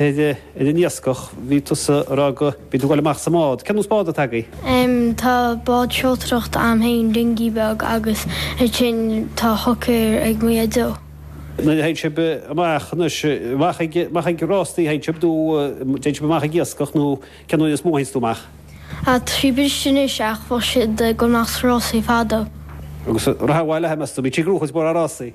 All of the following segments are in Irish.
ar an iascach, bhí tusa a rá go mbíonn tú ag gabháil amach sa mbád. Cén nós bád atá agaibh? Em, tá bád seoltóireachta a'm fhéin, dinghy beag, agus ansin tá hooker ag mo dhaideo. Nuair a théann sibh amach anois, amach ag, amach ag rástaí a théann sibh nó an dtéann sibh amach ag iascach nó cén uair is mó a théanns tú amach? Ah, tá sí briste anois ach bhíodh siad ag gabháil amach sna rásaí fadó. Agus rachaidh abhaile, meas tú? Bíonn sé ag gruth is mór a'rásaí.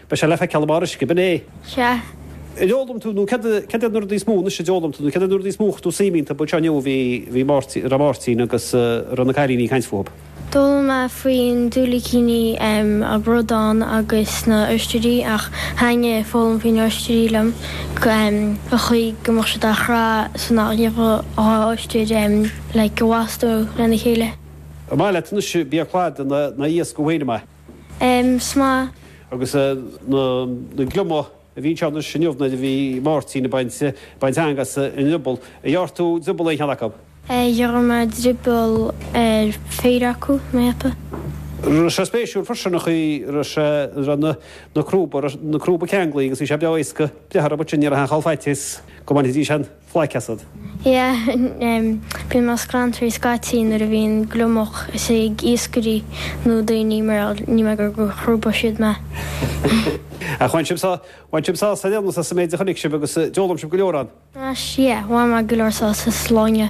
Beidh sé le feiceáil amach ar uisce, ab in é? Sea. An d'fhoghlaim tú, nó céard iad na rudaí is mó, anois a d'fhoghlaim tú, nó céard iad na rudaí is mó a chuir tú suim iontu? Bhuel, anseo inniu a bhí, bhí Máirtín, a raibh Máirtín agus, eh, a raibh na cailíní ag caint fúthu. D'fhoghlaim mé faoi na diúilicíní, em, an bradán agus na oisdirí ach thaitnigh a foghlaim faoi na oisdirí liom, go, em, an chaoi go mbeadh siad á chraitheadh so nach ngabhfadh dhá oisdire, em, like, i bhfastó lena chéile. An maith leat anois bia cladaigh nó iasc thú fhéin, an maith? Is maith. Agus na gliomaigh a bhí anseo anois inniu, nuair a bhí Máirtín ag baint eanga as an drioball, ar ghearr tú drioball ar aon cheann acu? Ghearr mé drioball ar cheithre acu, na hata. Raibh sé spéisiúil freisin an chaoi a raibh sé, a raibh na crúba, a raibh na crúba ceanglaithe agus bhí sé breá éasca breith orthu, mar sin ní raibh aon chall faitíos go mbainfidís aon. Phlaic asad. Yeah, bíonn mé scanraithe scaití nuair a bhíonn gliomach is ag iascairí nó daoine mar ní mé gur chrúba siad mé. Ach bhain sibh sá, bhain sibh sásamh ar aon nós as an méid a chonaic sibh agus d'fhoghlaim sibh go leor ann, as, yeah, bhain mé go leor sásamh as an lá inniu.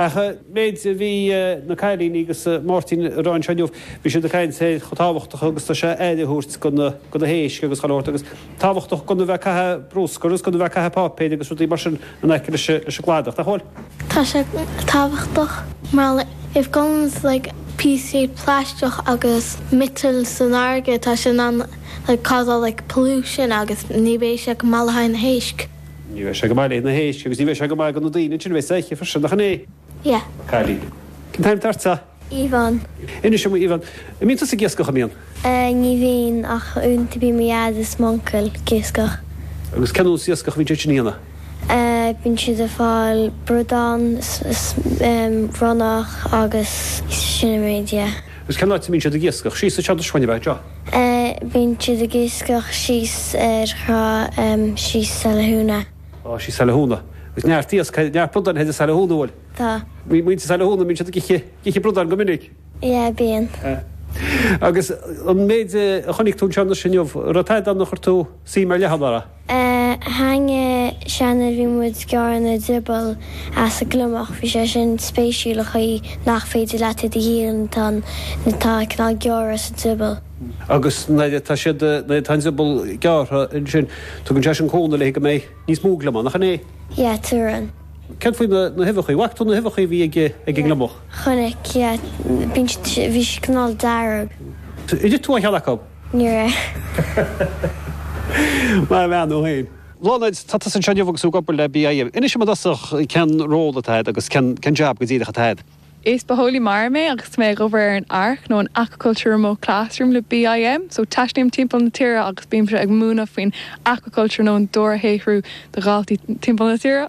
Ach an méid a bhí na cailíní agus Máirtín a rá anseo inniu, bhí siad ag caint ar chomh tábhachtach agus tá sé aire a thabhairt do na héisc agus chomh agus tábhachtach gan a bheith ag caitheamh brúscar agus gan a bheith ag caitheamh páipéir agus rudaí mar sin in aice leis an gcladach, nach bhfuil? Tá sé tábhachtach mar like má ghabhanns like píosaí plaisteach agus miotail san fharraige tá sé in ann like causáil like pollution agus ní bheidh sé go maith le haghaidh na héisc. Ní bheidh sé go maith le haghaidh na héisc, agus ní bheidh sé go maith do na daoine ansin, a bheas ag ithe freisin, nach 'in é? Yeah. Cailín. Cén t-ainm atá ortsa? Yvonne. Inis dom, a Yvonne, an mbíonn tusa ag iascach, an mbíonn? Eh, ní bhíonn, ach uaireanta bíonn mo Dhaid is m'uncail ag iascach. Agus cén nós iascach a bhíonn siad sin a dhéanamh? Eh, bíonn siad ag fáil bradáin 's, 's ehm, ronnach agus sin an méid, yeah. Agus cén áit a mbíonn siad ag iascach? Síos anseo do Swan, a bheith, anseo? Bíonn siad ag iascach síos ar thrá síos Saile Thúna. Thíos i Saile Thúna. Agus neart iasc thart, neart brudáin thart ar Shaile Thúna, an bhfuil. Tá. Bhí muintir Shaile Thúna, bíonn siad ag ithe, ag ithe brudáin go minic. Yeah, bíonn. Agus an méid a chonaic tú anseo anois inniu, raibh tada eile ann ar chuir tú suim ar leith ann, an raibh? a haigne cheana bhí muid ag gearradh an drioball as an gliomach, bhí sé sin spéisiúil an chaoi nach féidir leat iad a dhíol nuair atá cineál gearradh sa drioball. Agus nuair atá siad, nuair atá an drioball gearrtha ansin, tugann sé sin cúnamh léi go mbeidh níos mó gliomach, nach in é? Yeah, tugann. Céard faoi na, na huibheachaí? Bhfaca tú na huibheachaí a bhí ag, ag an ngliomach? Yeah, chonaic, yeah, bíonn siad, bhí siad cineál dearg. Ar ith tú aon cheann acu? Níor ith. Maith an bhean thú féin. Bláthnaid, tá tusa anseo inniu agus tú ag obair le BIM. Inis dom i dtosach cén ról atá agat agus cén jab go díreach atá agat. Is bitheolaí mara mé agus tá mé ag obair ar an ARC nó an Aquaculture Remote Classroom le BIM, so taistealaím timpeall na tíre agus bímse ag múineadh faoin aquaculture nó an dobharshaothrú do dhaltaí timpeall na tíre.